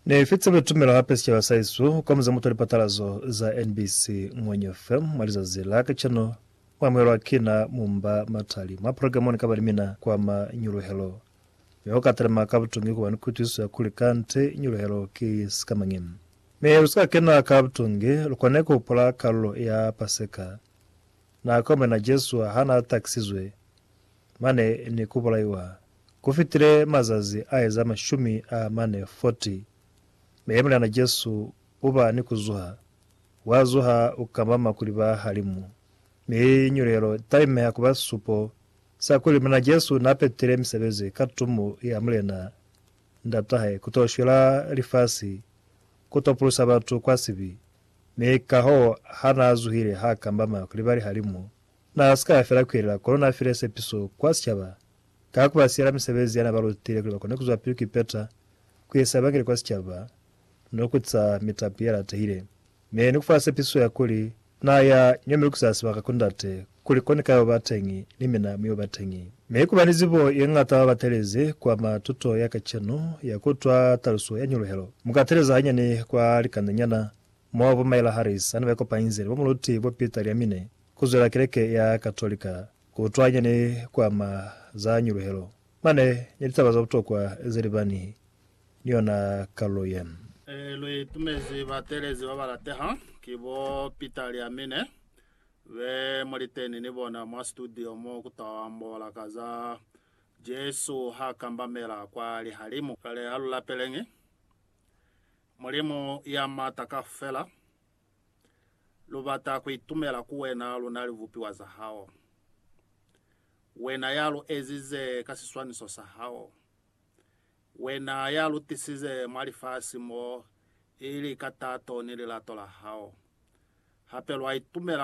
Ne fitse luli tumelo hape sicaba sa hesu kwa muze mutwa lipatalazo za NBC Ngwenyo FM mwa lizazi la kacenu mu amuhelwa kina Mumba Matali mwa programa Ni kaba ni mina kwa mañuluhelo. Mi ho ka talima ka butungi kuba ni kuitwisiso ya kuli kanti nyuluhelo ki sikamañi. Mi lu si ka kena ka butungi, lu kone ku hupula kalulo ya Paseka, nako mina Jesu ha na takisizwe mane ni ku bulaiwa. Ku fitile mazazi a eza mashumi a mane, 40, mi Muliana Jesu u ba ni ku zuha. Wa zuha, u kamama kuli ba halimu, mi nyulelo i talimeha ku ba supo sa kuli Muliana Jesu n'a petile misebezi ka tumo ya Mulena Ndat'a hae ku t'o shwela lifasi, ku t'o pulusa batu kwa sibi. Mi kahoo, ha n'a zuhile, h'a kamama kuli ba lihalimu. N'a si ka fela ku yelela, kono n'a file sepiso ku ba sicaba ka ku ba siyela misebezi ya n'a ba lutile kuli ba kone ku zwapili ku ipeta ku isa Evangeli kwa sicaba ni ku tisa mitapi ye latehile, mi ni ku fa sepiso ya kuli n'a ya ño mi lukisa sibaka ku Ndate kuli ko ni ka yo ba teñi, ni mina mu yo ba teñi. Mi ku ba ni zibo ye ñata ba batelezi ku ama tuto ya kacenu ya ku utwa taluso ya nyuluhelo. Mu ka teleza hanyani kwa likandenyana mo bo Myla Harris ha ne ba ikopanyize ni bo muluti bo Peter Liamine Ku zwela keleke ya Katolika ku utwanya ni ku ama za nyuluhelo, mane ni litaba za butokwa ze libani ni yona kalulo ye. Lu itumezi batelezi ba ba lateha ki bo Peter li Amine be mu li teni ni bona mwa situdio mo ku ta ambola ka za Jesu ha kambamela kwa lihalimu. Kale ha lu lapeleñi Mulimu ya Mata Kaufela Lu bata ku itumela ku Wena, luna libupiwa za Hao, Wena ya lu ezize ka siswaniso sa Hao, Wena ya lu tisize mwa lifasi mo, ili ka tato ni lilato la Hao. Hape lwa itumela